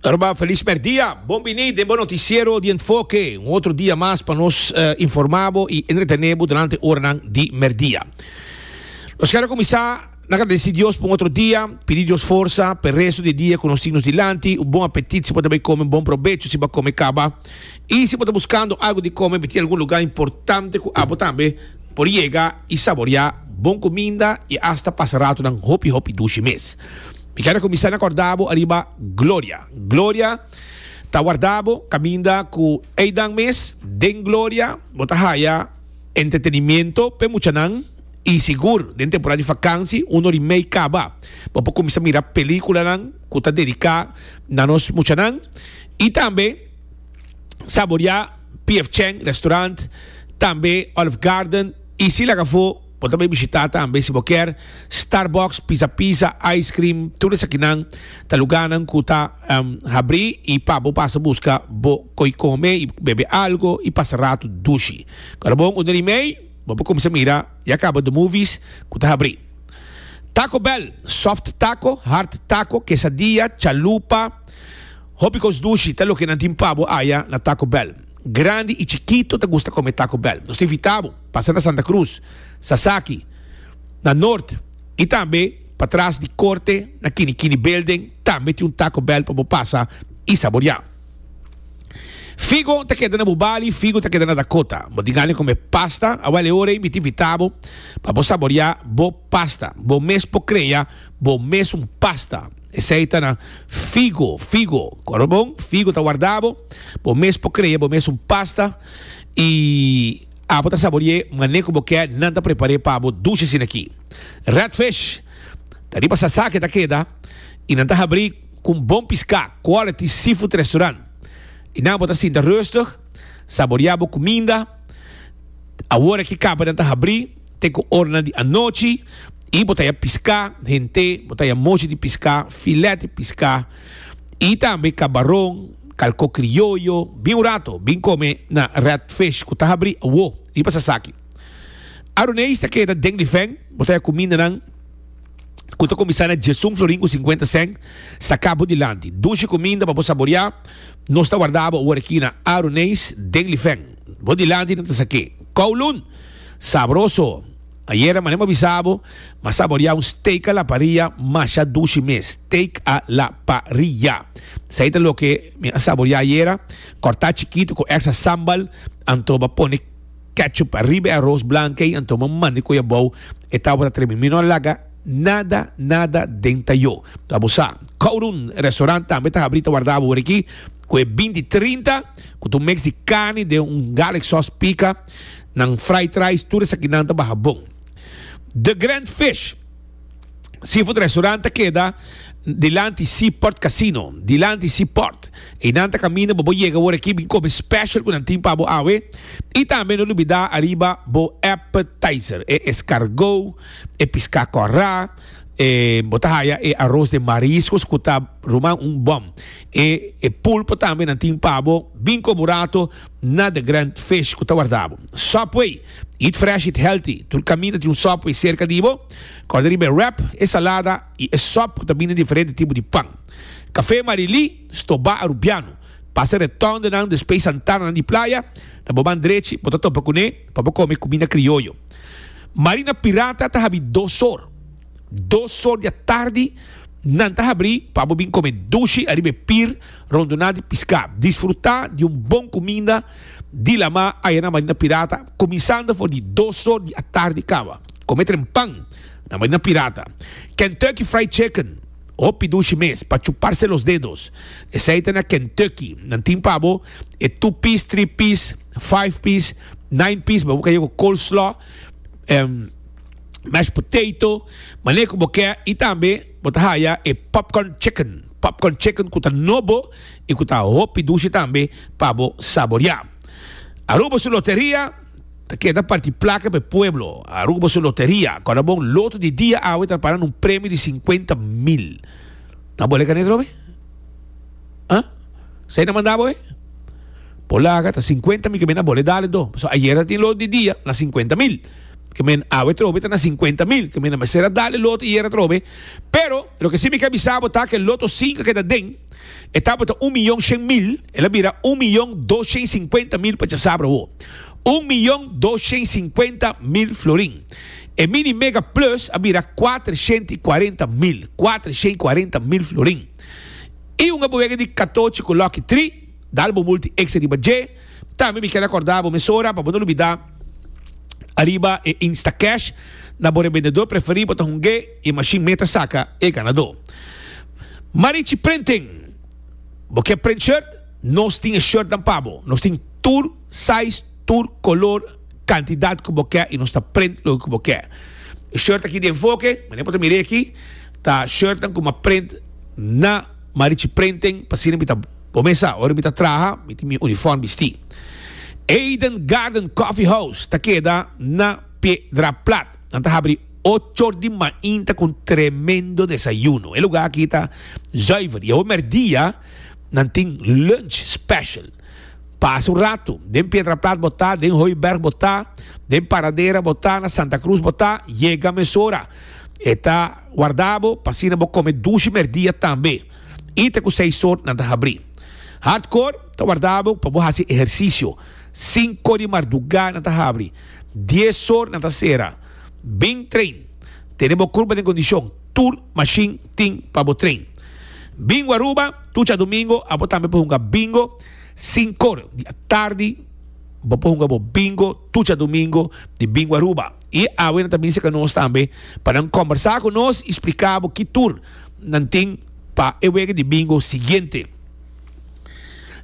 Aruba, feliz merdia. Bon bini den bo noticiero di Enfoque. Un otro dia mas pa nos uh, eh, informabo i entretenebo durante oranan di merdia. Nos kere kumisa na agradeci Dios por un otro dia, pidi Dios forza per resto di dia ku nos tin nos dilanti, un bon apetit si bo ta bai kome, un bon probecho si bo kome kaba. I si bo ta buskando algo di kome, bo tin algun lugar importante ku abo tambe por yega i saboreá bon kuminda i asta pasa ratonan hopi hopi dushi mes. Mi ker a kuminsá na kòrda bo ariba Gloria. Gloria ta warda bo kaminda ku Eidan mes. Den Gloria bo ta haya entretenimentu p'e muchanan i sigur den temporada di fakansi uno di mei kaba bo por kuminsá mira pelíkulanan ku ta dediká na nos muchanan i tambe saboriá PF Chang Restaurant, tambe Olive Garden i si laga afó. Bo ta bay bishitá tambe si bo kier. Starbucks, Pisa Pisa, Ice Cream, tur esakinan ta lugánan ku ta habrí i pa bo pasa buska bo ko'i kome i bebe algo i pasa ratu dushi. Kua ta bon? Unda rimei bo por kuminsá mira ya kaba The Movies ku ta habrí. Taco Bell, Soft Taco, Hard Taco, Quesadilla, Chalupa, hopi kos dushi ta loke nan tin pa bo aya na Taco Bell. Grandi i chikito ta gusta kome Taco Bell. Nos ta invitá bo. Pasa na Santa Cruz, Sasaki, na Noord y tambe patras di Corte na Kini Kini Building tambe tin un Taco Bell pa bo pasa y saboria. Figo ta keda na Bubali, Figo ta keda na Dakota. Bo tin gana come pasta? Awel e ora y mi ta invita bo pa bo saboria bo pasta. Bo mes por crea bo mes un pasta. Esey ta na Figo, Figo. Corobon, Figo ta warda bo. Bo mes por crea bo mes un pasta y. Abo ta saborié mané ku bo kè, nan ta prepar'é pa bo dushi asina akí. Red fish, Ta riba sasake ta keda i nan ta habrí ku un bon piská, quality seafood restaurant. I nan abo ta sinta rustig, saboriá bo kuminda. Awor aki kabanan ta habrí te ku oranan di anochi i bo ta haya piská, hent'é, bo ta haya mochi di piská, filèt di piská. y tambe cabaron, calco criollo, bin un rato bin come na Red Fish cu ta habri awo, y pasa esaki. Aruneis ta keda den di fen, bo ta haña cumindanan cu ta cuminsa na djesun florin cu cincuenta cent, saca bo dilanti dushi cuminda pa bo saborea, nos ta warda bo awor aki na Aruneis den di fen, bo dilanti nan ta sake, Kowloon, sabroso! Ayera mane m'ha bisa bo, m'ha saboriá un steak a la parrilla masha dushi mes, steak a la parrilla. Esei ta loke mi a saboriá ayera, kòrtá chikito ku èkstra sambal, anto m'a pone kètchup ariba e aros blank ei, anto m'a manda e koe abou. E tabata tremendo, mi no a laga nada nada den tayó. Pa bo sa, Kowloon Restaurant tambe ta habrí ta warda awor aki, ku e binti trinta, ku ta un mèks di karni den un garlic sòs pika. Nan fried rice tur esakinan ta baha bon. The Grand Fish Seafood Restaurant ta keda dilanti Seaport Casino, dilanti Seaport. Einan ta kaminda bo bo yega wor aki bin kome special ku nan tin pa bo awe. I tambe no lubida ariba bo appetizer, e escargot, e piská kòrá, e bo ta haya e aros den mariscos ku ta ruman un bòm. E e pulpo tambe nan tin pa bo bin koborato. Nada grand fish cu ta warda bo. Subway, eat fresh, eat healthy, tur caminda tin un Subway cerca di bo. Corda riba e wrap, e salada y e sop cu ta bini den diferente tipo di pan. Cafe Marily, sto ba Arubiano. Pasa retonde nan despues e santana nan di playa, na bo ban drechi bo ta topa cune pa bo come cuminda crioyo. Marina Pirata ta habi dos sor. Dos sor di atardi nan ta habrí pa bo bin kome dushi ariba e pir rondoná di piská. Disfrutá di un bon kuminda di lamá aya na Marina Pirata kuminsando for di dos sor di atardi kaba. Kome trempan na Marina Pirata, Kentucky Fried Chicken, hopi dushi mes pa chuparse los dedos. Esei ta na Kentucky. Nan tin pa bo e two piece, three piece, five piece, nine piece, bo ka yega ku coleslaw. mashed potato, manera ku bo ke i tambe bo ta haya e popcorn chicken, popcorn chicken ku ta nobo i ku ta hopi dushi tambe pa bo saboreá. Aruba su loteria ta keda parti plaka pa e pueblo. Aruba su loteria, akorda bon, loto di dia awe ta para na un premio di sinkuenta mil. No a boleka neto awe? Ha? Sa i ta manda bo awe? Bo laga ta sinkuenta mil ke mi na bole dal anto. Pasobra ayera tin loto di dia, na sinkuenta mil. ke men awe trobe ta na sinkuenta mil, ke men a mester a dal e loto ier atrobe, pero loke si mi ke bisa bo ta ke loto sinku a keda den etap bo ta un miyon shen mil, el a bira un miyon dos shen sinkuenta mil pa chasabra awo. Un miyon dos shen sinkuenta mil florin. E Mini Mega Plus a bira kuater shent i kuarenta mil, kuater shen i kuarenta mil florin. I un aboega di katochi ku lòk i tri, dal bo multi ekstra riba dje, Tambe mi ker acorda bo mesora pa bo no lubida ariba e Instacash na bo rebendedor preferi bo ta hunge y e machine meta saca e ganador. Marichi Printing, Bo kier print shirt? Nos tin e shirtnan pa bo. Nos tin tur size, tur color, cantidad cu bo kier y nos ta print loke cu bo kier. E shirt aki di enfoke, manera bo ta mira aki, ta shirtnan cu bo a print na. Ma richie prenten pa sina mi ta bo mesa. Ora mi ta traha mi tin mi uniform bisti. Eden Garden Coffee House ta keda na Pedra Plat. Nan ta habri ochor di mainta ku un tremendo desayuno. E lugá aki ta zuiver. I awor mèrdia nan tin lunch special. Pasa un ratu. Den Pedra Plat bo ta, den Hooiberg bo ta, den Paradera bo ta, na Santa Cruz bo ta, yega mesora. E ta warda bo pa asina bo kome dushi merdia tambe i ta ku seis sort nan ta habri. Hardkor ta warda bo pa bo hasi ehersisio. Sinku di mardugá nan ta habri, dies sort nan ta sera. Bin train. Tene bo kurpa den kondishon. Tur mashin tin pa bo train. Bingo Aruba, Tucha Domingo abo tambe por hunga bingo. Sinkor di atardi bo por hunga bo bingo Tucha Domingo di Bingo Aruba. I awe nan ta bisa ka nos tambe pa nan kombersá ku nos i spliká bo ki tur nan tin pa e wega di bingo siguiente.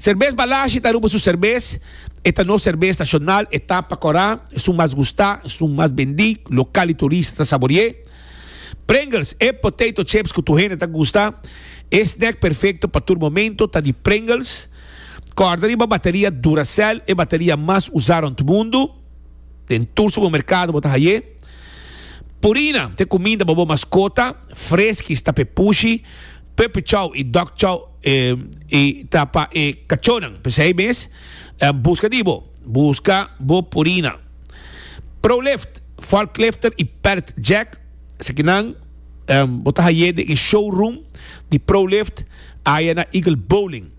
Serbes Balashi ta Aruba su serbes. E ta nos serbes nashonal. E ta pa Kòrá su mas gustá, su mas bendí. Lokal i turista ta sabori'é. Pringles, e potato chips ku tur hende ta gusta. E snèk perfekto pa tur momentu ta di Pringles. Kòrda riba bateria Duracell, e bateria mas usá rònt mundu. Den tur supermerkado bo ta haye Purina te kuminda pa bo maskota, Friskies ta pa e pushi, Puppy Chow i Dog Chow ta pa e kachónan. P'esei mes, buska di bo, buska bo Purina. Prolift, Volklifter i Pallet Jack, esaki nan bo ta haye den e showroom di Prolift aya na Eagle Bowling.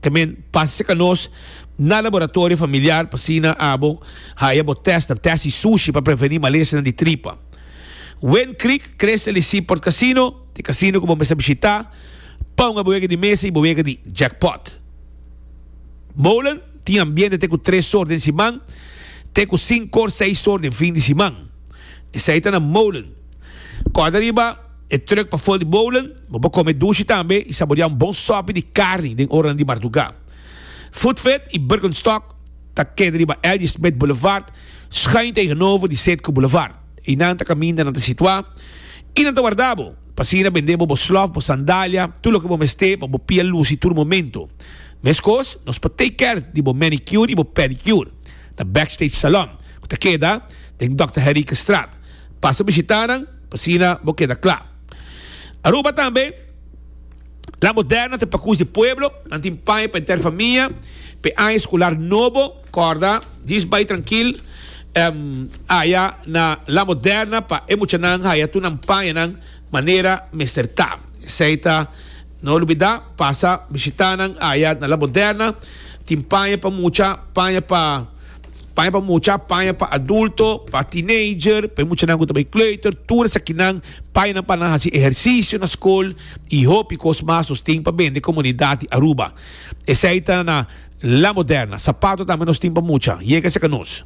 Te men pase ca nos na laboratorio familiar pa asina abo haya bo test nan, test di sushi pa preveni malesanan di tripa. Wind Creek Crest LE Seaport Casino t'e casino cu bo mester bishita pa un abuega di mesa y boega di jackpot. Bowlen tin ambiente t'e cu tres sor den siman t'e cu sincor seis sor den fin di siman. Esai ta na Molen. Corda riba. E truk pa Folly Molen, bo por kome dushi tambe i saborea un bon sòpi di karni den oranan di marduga. Foodfit i Birkenstock ta keda riba L. J. Smith Boulevard, schuin tegenover di Setco Boulevard. Einan ta kaminda nan ta situá i nan ta warda bo. P'asina bend'é bo bo slòf, bo sandalia, tur loke bo mester pa bo piel lusi tur momento. Meskos, nos por take care di bo manicure i bo pedicure na Backstage Salon, ku ta keda den Dòkter Henriquestraat. Pasa bishita nan pa asina bo keda kla. Aruba tambe, La Moderna ta pakus di pueblo, nan tin paña pa henter famia p'e aña eskular nobo, kòrda dis bai trankil aya na La Moderna pa e muchanan haya tur nan paña nan manera mester ta. Esei ta No olbida, pasa bishita nan aya na La Moderna, tin paña pa mucha, paña pa. Paña pa mucha, paña pa adulto, pa teenager, pa e muchanan ku ta bai kleuter, tur esakinan, pañanan pa nan hasi ehersisio na skol i hopi kos mas nos tin pa bende komunidat di Aruba. Esei ta na La Moderna. Sapato tambe nos tin pa mucha. Yega seka nos.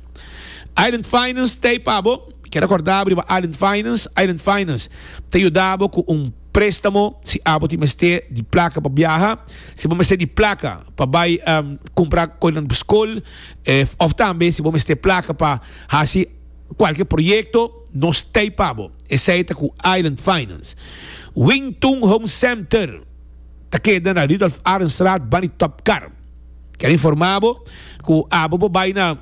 Island Finance ta ei pa bo. Kier akordabo riba Island Finance? Island Finance ta yudabo ku un préstamo si abo tin mester di plaka pa biaha, si bo mester di plaka pa bai kumpra korenan pa skol, Of tambe si bo mester plaka pa hasi kualke proyekto, nos ta ei pa bo. Esei ta ku Island Finance. Wing Tun Home Center ta keda na Rudolf Arendstraat Bani Top Kar. Ker informa bo ku abo bo bai na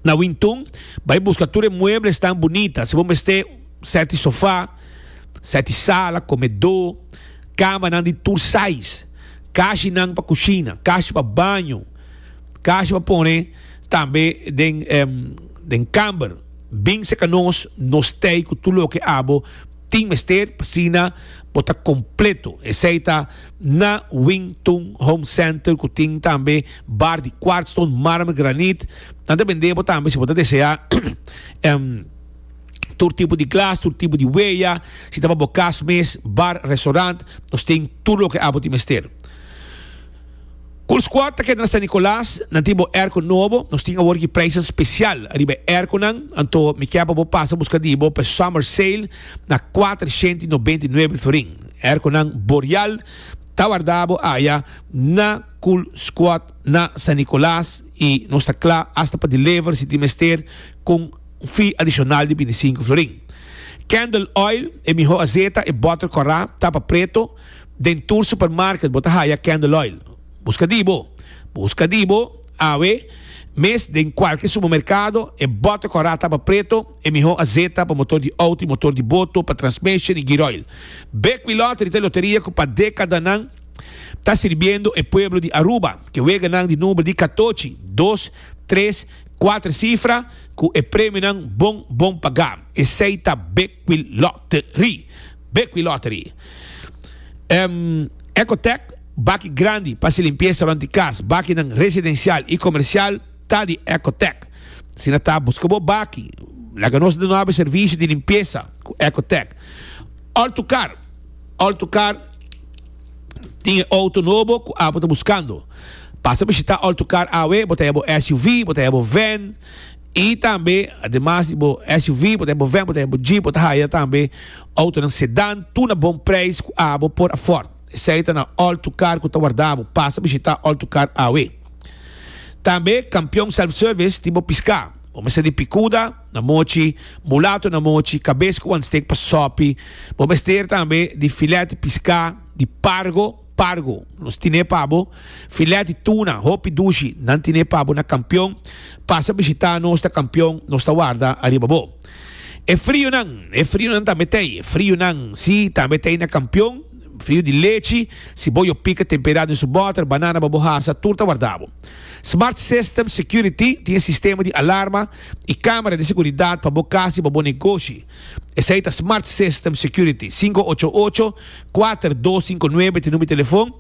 na Wing Tun, bai buska tur e mueble esnan bunita. Si bo mester sèt e sofá, sèt e sala, komedó, kamanan di tur size, kashinan pa kushina, kashi pa baño. Cash bo pone tambe den den camber bin seca nos no stay cu tur loke abo tin mester pa asina bo ta completo esey ta na Wing Tun Home Center cu tin tambe bar di quartz stone marmer granit nan ta bende bo tambe si bo ta desea tur tipo di glass tur tipo di wea si ta pa bo cas mes bar restaurant nos tin tur loke abo tin mester. Cool Squad ta keda na San Nicolas, nan tin bo airco nobo, nos tin awor aki prijzen special riba e airconan, anto mi kier pa bo pasa buska di bo pa e summer sale na cuatrociento y noventa y nueve florin. Airconan Boreal ta warda bo aya na Cool Squad na San Nicolas y nos ta cla hasta pa deliver si tin mester con un fee adicional di binticinco florin. Candle Oil, e miho azeta, e butter cora, tapa preto, Den tur supermarket bo ta haya candle oil. Busca di bo. Busca di bo. Awe, mes den cualke supermercado, e bote cora a tapa preto, e miho azeta pa motor di auto y motor di boto, pa transmission y gear oil. Bekwee Lottery ta e loteria cu pa decadanan ta sirbiendo e pueblo di Aruba, ke weganan di number di catochi, dos, tres, cuater cifra, cu e premionan bon bon paga. Esey ta Bekwee Lottery. Bequi Lottery. Ecotec, Baki grandi pa hasi limpiesa rond di cas, bakinan residencial y comercial ta di Ecotec. Si nan ta busca bo baki, laga nos duna bo e servicio di limpiesa cu Ecotec. Altocar, Altocar tin e auto nobo cu abo ta buscando. Pasa bishita Altocar awe, bo ta haya bo SUV, bo ta haya bo van, Y tambe ademas di bo SUV bo ta e bo van, bo ta e bo jeep, bo ta haya tambe autonan sedan tur na bon prijs cu abo por afford. Esey ta na All to Car cu ta warda bo. Pasa bishita All to Car awe. Tambe Campeon Self Service tin bo pisca. Bo mester di picuda na mochi, mulato na mochi, cabes cu one stick pa sopi. Bo mester tambe di filet pisca di pargo. Pargo, nos tine pabo, filet di tuna, hopi dushi, nan tine pabo na kampion, pasa bishita nos ta kampion, nos ta warda ariba bo. E frionan, e frionan tambe t'ei, frionan, si, tambe t'ei na kampion, frio di lechi, si bo yo pika temperado en su boter, banana pa bo hasa, tur ta warda bo. Smart System Security tin e sistema di alarma i kamera di seguridat pa bo kas i pa bo negoshi. Esei ta Smart System Security, sinku ocho ocho, kuater dos sinku nuebe t'e number di telefon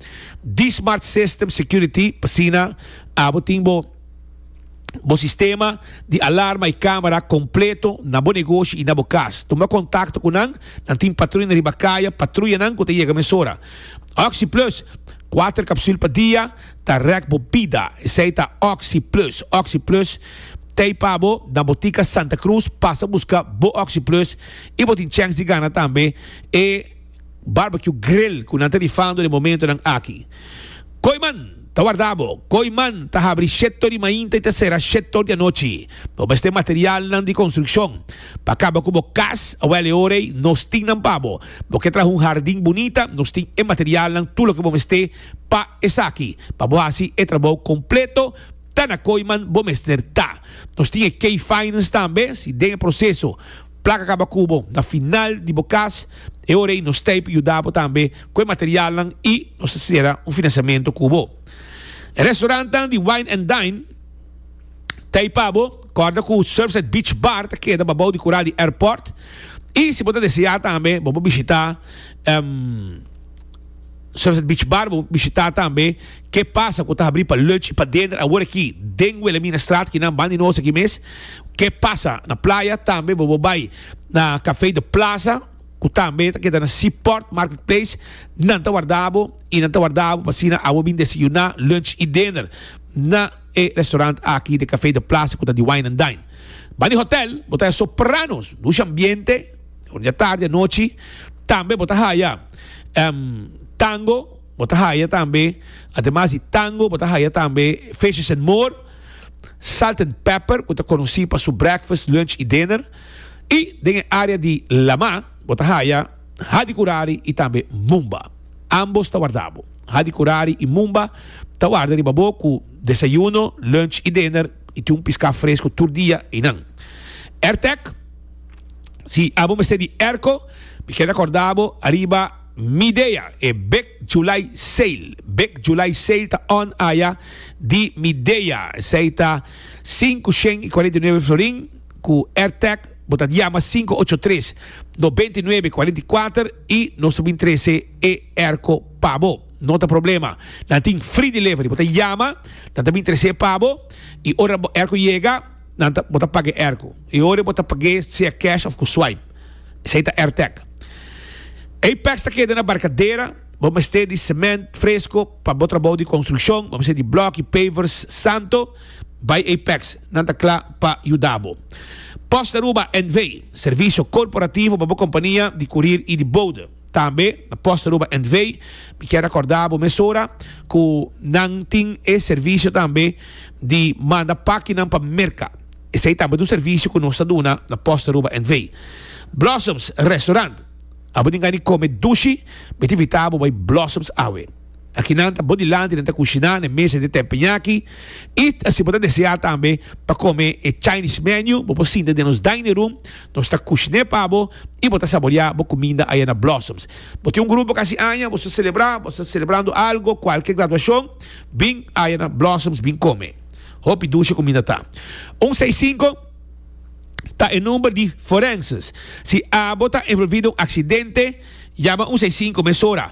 di Smart System Security p'asina abo tin bo bo sistema di alarma i kamera kompleto na bo negoshi i na bo kas. Tuma kontakto ku nan, nan tin patruya riba kaya, patruyanan ku ta yega mesora. Oxyplus, kuater kapsul pa dia. Ta rèk bo bida, esei ta Oxi Plus. Oxi Plus ta ei pa bo, na Botica Santa Cruz pasa buska bo Oxi Plus i bo tin chèns di gana tambe e Barbecue Grill ku nan ta rifando den momentonan aki. Koiman ta warda bo. Koiman ta habri shet'or di mainta i ta sera shet'or di anochi. Bo mester materialnan di konstrukshon pa kaba ku bo kas? Awèl e ora ei nos tin nan pa bo. Bo ke traha un hardin bunita? Nos tin e materialnan, tur loke bo mester. Pa esaki, pa bo hasi e trabou completo, ta na Kooiman bo mester ta. Nos tin e Key Finance tambe, si den e proceso plaka caba cu bo na final di bo cas, e ora ey nos ta ey pa yuda bo tambe cu e materialnan y nos ta cera un financiamento cu bo. E restaurantnan di Wine and Dine ta ey pa bo, corda cu Surfside Beach Bar ta keda babou di cural di Airport y si bo ta desea tambe bo por bishita. Sunset Beach Bar bo bishitá tambe Ke Pasa ku ta habrí pa lunch i pa dinner awor aki den Wilhelmina Straat kinan ban di nos aki mes Ke Pasa na playa tambe bo por bai na Café de Plaza ku tambe ta keda na Seaport Market Place nan ta warda bo i nan ta warda bo pa asina awor bin desayuná lunch i dinner na e restaurant aki di Café de Plaza ku ta di wine and dine Ban di hotel bo ta haya sopranos dusha ambiente ora djatardi anochi tambe bo ta haya. Em tango bo ta haya tambe ademas di tango bo ta haya tambe fishes and more salt and pepper ku ta konosi pa su breakfast lunch y dinner y den e área di lama bo ta haya hadi kurari y tambe mumba ambos ta wardabo hadi kurari y mumba ta warda riba bo ku desayuno lunch y dinner y tin un piská fresco tur dia eynan Airtek. Si abo mester di erko, mi keda korda bo ariba Midea, e Big July Sale. Big July Sale ta on aya di Midea. Esei ta sinku shen i kuarenta i nuebe florin ku Airtag. Bo ta yama sinku ocho tres noventa i nuebe kuarenta i kuater i nos ta bin trese e erko pa bo. No ta problema. Nan tin free delivery. Bo ta yama, nan ta bin trese pa bo. I ora bo erko yega. Nan ta bo ta pag'e airco. E ora bo ta pag'e sea cash of cu swipe. Esey ta airtag. Ey packs ta keda na barcadera. Bo mester di cement fresco pa bo trabao di construccion. Bo mester di blocki, pavers, santo. Bay ey packs. Nan ta cla pa yuda bo. Post Aruba NV. Servicio corporativo pa bo compania di curir y di bode. Tambe na Post Aruba NV. Mi kier recorda bo mesora cu nan tin e servicio tambe di manda pakinan pa Merca. Esey tambe ta un servicio cu nos ta duna na Post Aruba NV. Blossoms Restaurant. Abo tin gana di come dushi, mi ta invita bo bay Blossoms awe. Akinan ta bo dilanti nan ta kushiná na e mesa di tempeñaki i si bo ta deseá tambe pa kome e Chinese menu, bo por sinta den nos dining room, nos ta kushiné pa bo i bo ta saboreá bo kuminda aya na Blossoms. Bo tin un grupo kasi aña bo sta selebrá, bo sta selebrando algo, kualke graduashon, bin aya na Blossoms bin kome. Hopi dushi e kuminda ta. Un seis sinku ta e number di Forenses. Si abo ta envolví den un aksidente, yama un seis sinku mesora.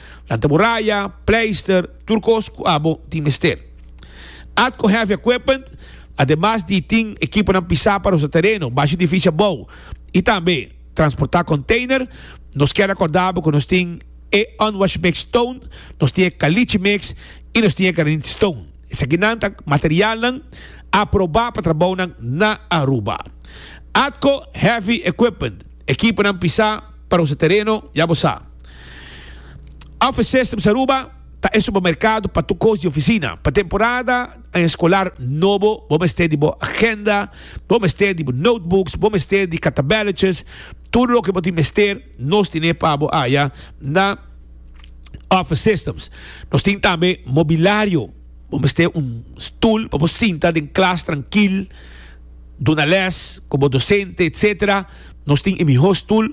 Planta muraya, pleister, tur kos ku abo tin mester. At ku heavy equipment, ademas di tin ekiponan pisá pa rusa tereno, basha edifisio abou i tambe transportá konteiner, nos keda kòrdá bo ku nos tin e unwashed mix stone, nos tin e kalichi mix i nos tin e granite stone. Esakinan ta materialnan aprobá pa trabounan na Aruba. At ku heavy equipment. Ekiponan pisá pa nos e tereno, ya bo sa. Ofesenan sa Aruba ta e supermerkado pa tur kos di ofisina. Pa temporada aña skolar nobo bo mester di bo agenda, bo mester di bo notebooks, bo mester di katabèlètjes, tur loke bo tin mester nos tene pa bo aja na Ofesenan. Nos tin tambe mobilario, bo mester un stul pa bo sinta den klas trankil. duna les komo dosente etc. Nos tin e mihó stul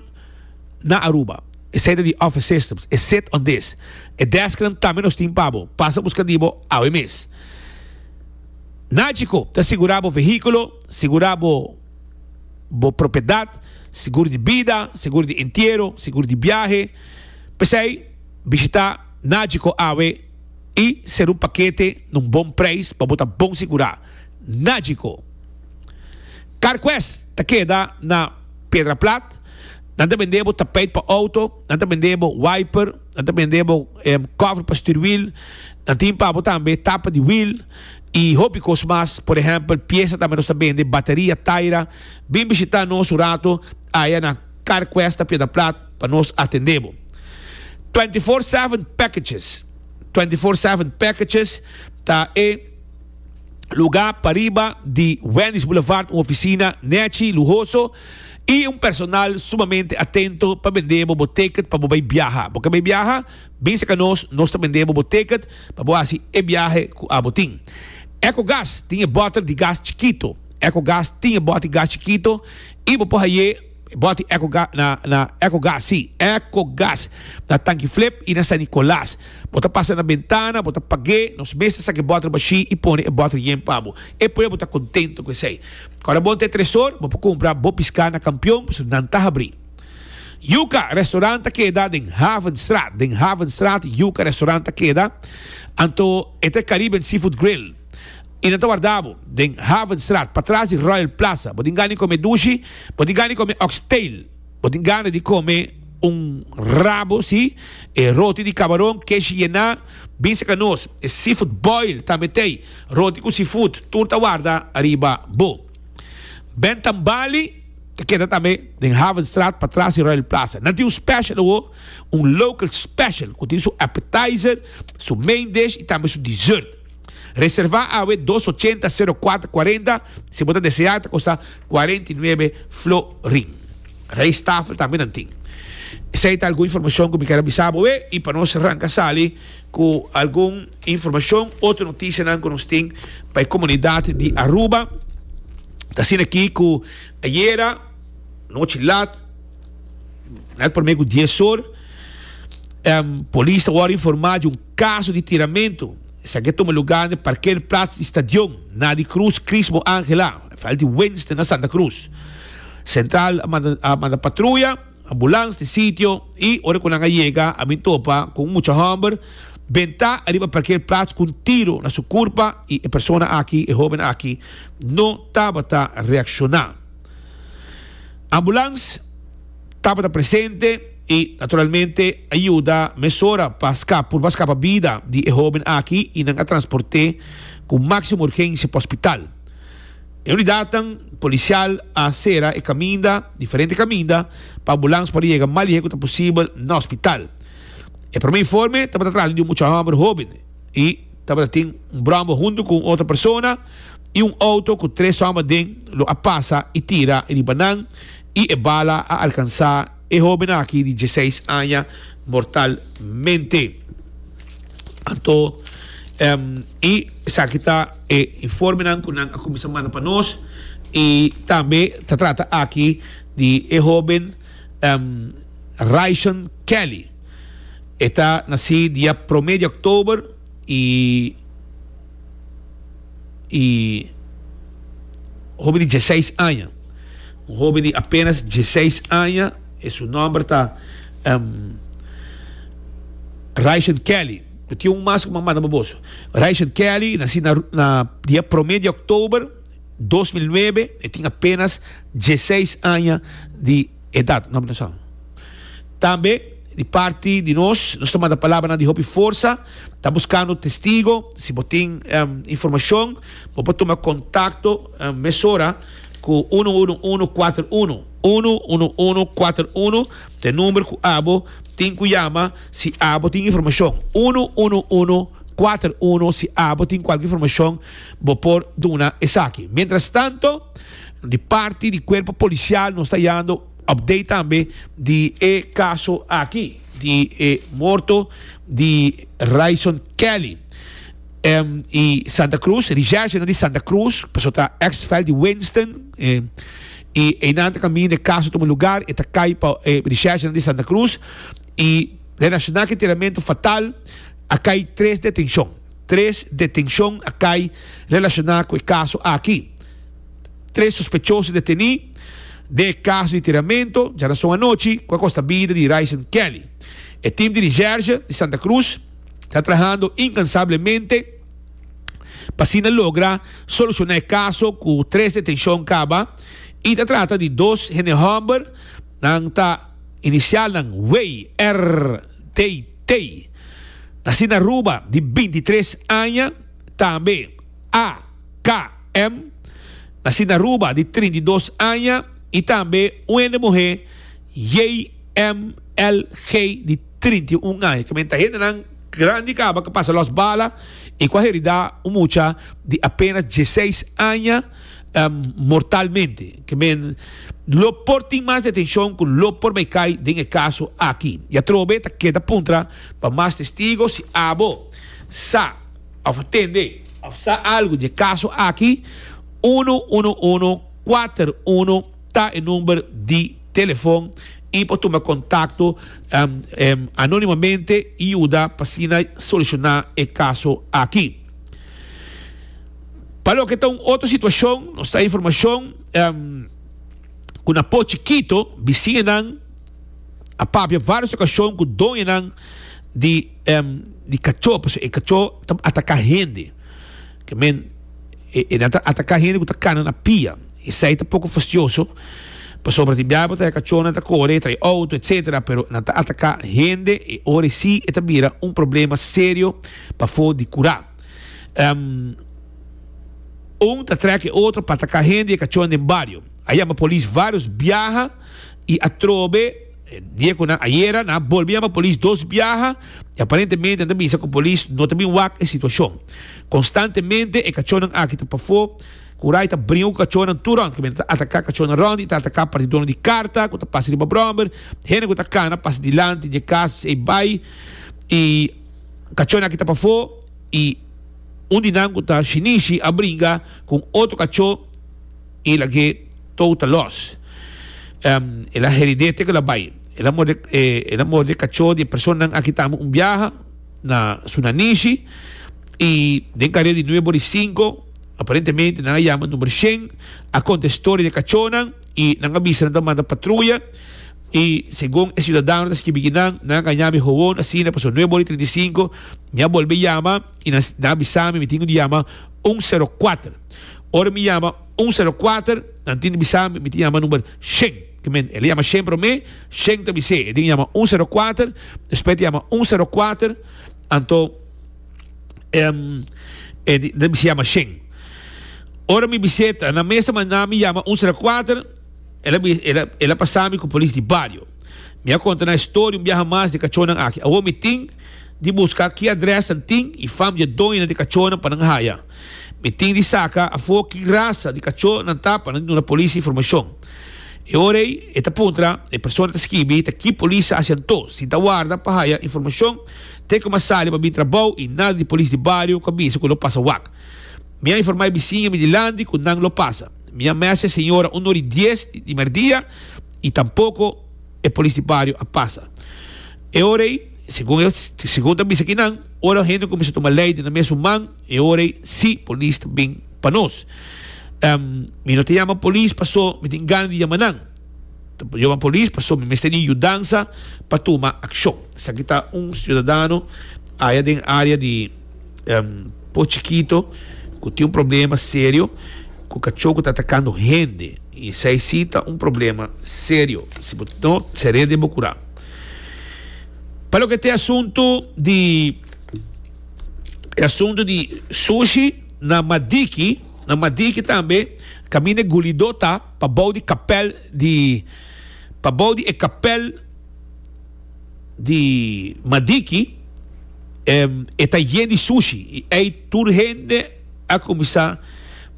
na Aruba, eseda di Office Systems, e sit on this. E desknan tambe nos tin pa bo, pasa buska di bo awe mes. Nagico ta sigurá bo vehíkulo, sigurá bo bo propiedat, sigur di bida, sigur di entiero, sigur di biahe. P'esei bishitá Nagico awe i ser un pakete na un bon preis pa bo ta bon sigurá. Najico. Carquest ta keda na Piedra Plat, nan ta bende bo tapijt pa auto, nan ta bende bo wiper, nan ta bende bo cover pa stuurwiel, nan tin pa bo tambe tapa di wiel y hopi cos mas, por ehempel pieza tambe nos ta bende, bateria, taira, bin bishita nos un rato aya na Carquest na Piedra Plat pa nos atende bo. Twenty four seven packages, twenty four seven packages ta e. lugá pariba di Wendy's Boulevard un ofisina nechi luhoso i un personal sumamente atento pa bendé bo bo ticket pa bo bai biaha. Bo ke bai biaha? Binse ka nos, nos ta bendé bo bo ticket pa bo hasi e biahe ku abo tin. Ecogas tin e bòter di gas chikito. Ecogas tin e bòter di gas chikito i bo por hayé. Bo a tin eco ga na na eco gas si eco gas na tanki flip y na san nicolas bo ta pasa na bentana bo ta pag'e nos mes ta saca e bottle bashi y pone e bottle yen pa bo e poi bo ta contento cu esey ora bo te tresor bo por cumpra bo pisca na campeon pasobra nan ta habri yuca restaurant ta keda den havenstraat den havenstraat yuca restaurant ta keda anto e ta cariben seafood grill. I nan ta warda bo den Havenstraat, patras di Royal Plaza. Bo tin gana di kome dushi, bo tin gana di kome oxtail, bo tin gana di kome un rabo, si, e roti di kabaron, keshi yená. Bin seka nos, e seafood boil tambe ta ei, roti ku seafood, tur ta warda ariba bo. Bentham Bali ta keda tambe den Havenstraat, patras di Royal Plaza. Nan tin un special awo, un local special ku tin su appetizer, su main dish i tambe su dessert. Reserva awe dos ochenta sero kuater kuarenta si bo ta deseá ta kosta kuarenta i nuebe florin. Rijsttafel tambe nan tin. Esei ta algun informashon ku mi kier a bisa boe i pa nos ranka sali ku algun informashon otro notisianan ku nos tin pa e komunidat di Aruba. Ta asina aki ku ayera nochi lat nèt promé ku dies or polis a wòrdu informá di un. Kaso di tiramentu esaki a tuma lugá na e parkerplats di stadion na di Krus, Krismo, Angela, fèl di Wensde na Santa Krus. Sentral a manda a manda patruya ambulans na e sitio i ora ku nan a yega a bin topa ku un mucha hòmber bentá ariba parkerplats ku un tiro na su kurpa i e persona aki, e hóben aki, no tabata reakshoná. Ambulans. Tabata presente i naturalmente a yuda mesora pa skapa, purba skapa bida di e hoben aki i nan a transport'é ku máksimo urgensia pa hospital. E unidatnan polisial a sera e kaminda, diferente kaminda, pa ambulans por yega mas lihé ku ta posibel na hospital. E promé informe tabata trata di un mucha hòmber hoben i tabata tin un bròmba huntu ku un otro persona i un outo ku tres hòmber den lo a pasa i tira riba nan. y e bala a alcansa e hoben aki di dieseis aña mortalmente. Anto y esaki ta e informenan cu nan a cuminsa manda pa nos y tambe ta trata aki di e hoben Ryshon Kelly. E ta naci dia prome di October y y hoben di dieseis aña. Un hoben di apenas dieseis aña, e su nòmber ta Rayshen Kelly. Bo tin un mas ku m'a manda pa boso. Rayshen Kelly nasí na na dia promé di òktober dos mil nuebe. E tin apenas dieseis aña di edat. Nòmber Nòsau. Tambe di parti di nos, nos ta manda palabranan di hopi forsa. Ta buskando testigo. Si bo tin informashon, bo por tuma kontakto mesora. ku unu unu unu kuater unu. Unu unu unu kuater unu ta e number ku abo tin ku yama si abo tin informashon. Unu unu unu kuater unu si abo tin kualke informashon bo por duna esaki. Mientras tanto di parti di kuerpo polisial nos ta yando update tambe di e kaso aki di e morto di Ryson Kelly. y Santa Cruz, di Jersey na di Santa Cruz, pasobra ta ex veld di Winston, y einan ta caminda e caso tuma lugar, e ta cay pa e di Jersey na di Santa Cruz, y relaciona cu e tiramento fatal a cay tres detencion, tres detencion a cay relaciona cu e caso aki, tres sospechoso deteni den e caso di tiramento djarason anochi cu a costa bida di Ryson Kelly, e team di di Jersey, di Santa Cruz. ta trahando inkansablemente pa asina logra solushona e kaso ku tres detenshon kaba i ta trata di dos hende hòmber nan ta inisialnan Wey R. DT. nasi na Aruba di binti tres aña, tambe A. K. M. nasi na Aruba di trinta i dos aña i tambe un hende muhé J. M. L. G. di trinta i un aña, kimente hendenan grandi kaba ke pasa lòs bala i ku a heridá un mucha di apenas dieseis aña mortalmente. Kimen lo por tin mas di atenshon ku lo por bai kai den e kaso aki. I atrobe ta keda puntra pa mas testigo si abo sa òf a tende òf sa algu di e kaso aki, uno uno uno kuater uno. Ta e number di telefon y por tuma contacto anonimamente y yuda pa asina soluciona e caso aki. Pa loke ta un otro situacion nos ta informacion cu na Pochi Quito bisiñanan a papia varios ocasion cu doñanan di cacho pasobra e cacho ta ataca hende. Te men, e nan ta ataká hende ku ta kana na pia. Esei ta poko fastioso, pasobra di biaha bo ta e kachó nan ta kore, e trae outo, etsetera, pero nan ta ataká hende i ora esí e ta bira un problema serio pafó di kurá. Un ta trèk e otro pa ataká hende i e kachónan den bario. A yama polis vários biaha i atrobe Dia ku na ayera nan a bolbe yama polis dos biaha i aparentemente nan ta bisa ku polis no ta bin wak e situashon. Konstantemente e kachónan aki ta pafó, Kurai ta bringa ku kachónan tur rònt, kende ta ataká kachónan rònt i ta ataká partidonan di karta ku ta pasa riba bròmber, hende ku ta kana pasa dilanti dje kas ei bai i kachónan aki ta pafó i un di nan ku ta Shinichi a bringa ku un otro kachó. i el a ge tou ta lòs. El a heri dete ku el a bai. El a morde el a morde kachó di e personanan aki ta amba un biaha na Sunanishi i den karea di nuebe ora i sinku aparentemente nan a yama numero shen a konta e storia di e kachónan i nan a bisa nan ta manda patruya i segun e siudadanonan ta skibi aki nan nan a gaña mi howon asina pasó nuebe ora i trinta i sinku mi a bolbe yama i nan a bisa mi mi tin di yama un sero kuater. Ora mi yama un sero kuater, nan tin di bisa mi mi tin yama number shen. Ki mente, el a yama shen promé, shen ta bis'é e tin yama un sero kuater, despues e tin yama un sero kuater, anto e ta bisa yama shen. Ora mi bis'é ta na mes ta manda mi yama un sero kuater, el a el a el a pasa mi ku polis di bario. Mi a konta nan historia un biaha mas di kachónan aki. Awor mi tin di buska ki adrèsnan tin i famia doño nan di kachónan pa nan haya. Mi tin di saca afo ki raza di cachor nan ta pa nan duna polis informacion. E ora ey e ta puntra, e persona ta skibi ta ki polis ta haci anto, sin ta warda pa haya informacion te coma sali pa bin trabao y nada di polis di bario cu a bisa cu lo pasa wak. Mi a informa e bisiña mi dilanti cu nan lo pasa. Mi a mester e señora un ori dies di merdia y tampoco e polis di bario a pasa. E ora ey, segun ta bisa ki nan, ora hende cuminsa tuma ley den nan mes su man, E ora ei si polis ta bin pa nos. Mi no ta yama polis paso mi tin gana di yama nan. Ta yama polis paso mi mester di yudansa pa tuma akshon. Esaki ta un siudadano aya den area di Port Chikito ku tin un problema serio ku kachó ku ta atakando hende. I esei si ta un problema serio. Si bo no ser redi bo kurá. Pa loke ta e asuntu di. E asuntu di sushi na Madiki, na Madiki tambe, kaminda e gulidó ta pa bou di kapèl di, pa bou di e kapèl di Madiki, e ta yen di sushi, i ei tur hende a kuminsá.